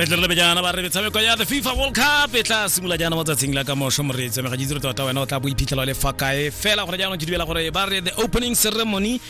re tle re lebe jaana ba re metshameko ya the fifa world cup e tla simolola jaana mo tsatsing la ka mošo moreetsi mega jitse re tota wena o tla bo iphitlhela o le fa kae fela gore jaanong ke dumela gore ba re the opening ceremony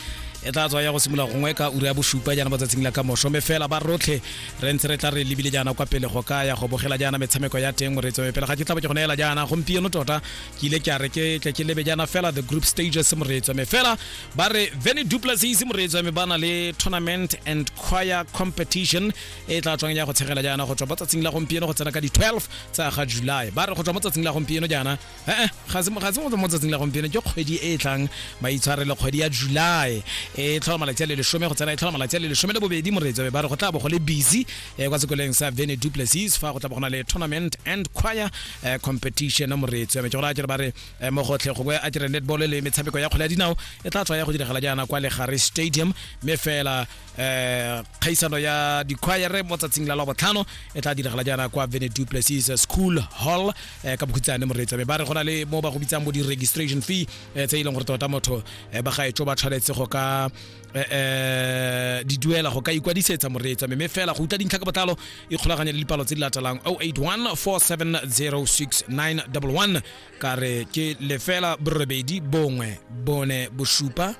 e tla tswa ya go simolola gongwe ka ura ya bosupa jaana mo tsatsing la ka mošo mme fela ba rotlhe re ntse re tla re lebile jaana kwa pele go ka ya go bogela jaana metshameko ya teng moreetsi me pele ga ke tla bo ke go neela jaana gompieno tota ke ile ke a re ke tle ke lebe jaana fela the group stages moreetsi me fela ba re veni duplasis moreetso me ba na le tournament and choir competition e tla tswang ya go tshegela jaana go tswa mo tsatsing la gompieno go tsena ka di-12 tsa ga july ba re go tswa mo tsatsing la gompieno jaana ee ga se mo tsatsing la gompieno ke kgwedi e e tlang ba itshwarele kgwedi ya july e tlhola malatsi a le lesome go tsena e tlhola malatsi a le lesome le bobedi moreetso me ba re go tla bo go le busy eh, kwa sekoleng sa veni duplasis fa go tla bo go na le tournament and choir eh, competition moreetso me ke go raya jalo ba re Eh, mogotlhe gongwe a dire netball le metshameko ya kgwele ya dinao e tla tswa ya go diragala jaana kwa legare stadium mme fela um kgaisano ya dikhwayere mo tsatsing la labotlhano e tla diragala jaana kwa vene duplessis school hall um ka bokhutsane moreetsa mme ba re go na le mo ba go bitsang bo di-registration fee um tse e leng gore tota motho um ba gaetso ba tshwanetse go ka um di duela go ka ikwadisetsa moreetsa mme fela go utlwa dintlha ka botlalo ikgolaganye le dipalo tse di latelang 081 470 6911 ka re ke lefela borobedi bongwe bone bosupa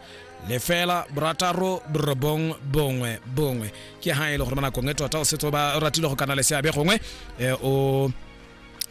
lefela borataro borobong bongwe bongwe ke ha e le gore mo nakong e tota o setse o ba o ratile go kana le seabe gongwe eh, o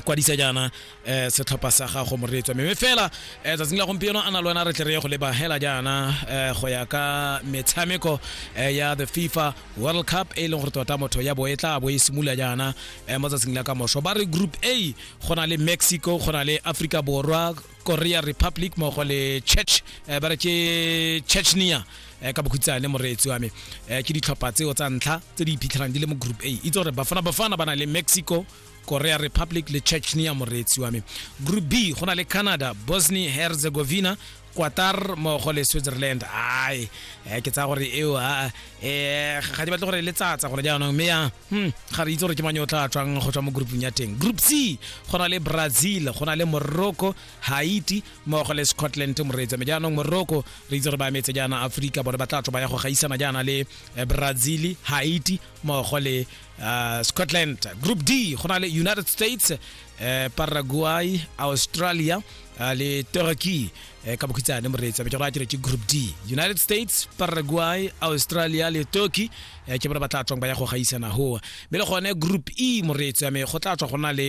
kwadisa jaana eh, setlhopha sa gago moreetswa mme fela eh, tsatsing la gompieno a na le wena re tle re ye go leba hela jaana eh, go ya ka metshameko eh, ya the fifa world cup e leng gore tota motho ya bo e tla bo e simolola jaana eh, mo tsatsing la ka moso ba re group a go na le mexico go na le africa borwa korea republic mogo le church eh, ba re ke chechnia eh, ka bokhutsane moreetsi wa me eh, ke ditlhopha tseo tsa ntlha tse di iphitlhelang di le mo group a itse gore bafana bafana ba na le mexico korea republic le chechnia moreetsi wa me group b go na le canada bosnia herzegovina qatar mogo le switzerland ai eh, ke tsaya gore eo ah, eh, ga di batle gore le tsatsa gore jaanong mme ya Hmm, ga re itse gore ke mang yo o tla tswang go tswa mo groupung ya teng group c go na le brazil go na le morocco haiti mmogo le scotland moreetsa me jaanong morocco re itse gore ba emetse jaana aforika bone ba tla tswa ba ya go gaisana jaana le eh, brazil haiti mmogo le uh, scotland group d go na le united states uh, paraguay australia uh, le turkey eh, ka bokhitsane moreetsi a be ke go atile ke group d united states paraguay australia le turkey eh, ke bona ba tla tswang ba ya go gaisana goa mme le gone group e moreetsi a me go tla tswa go na le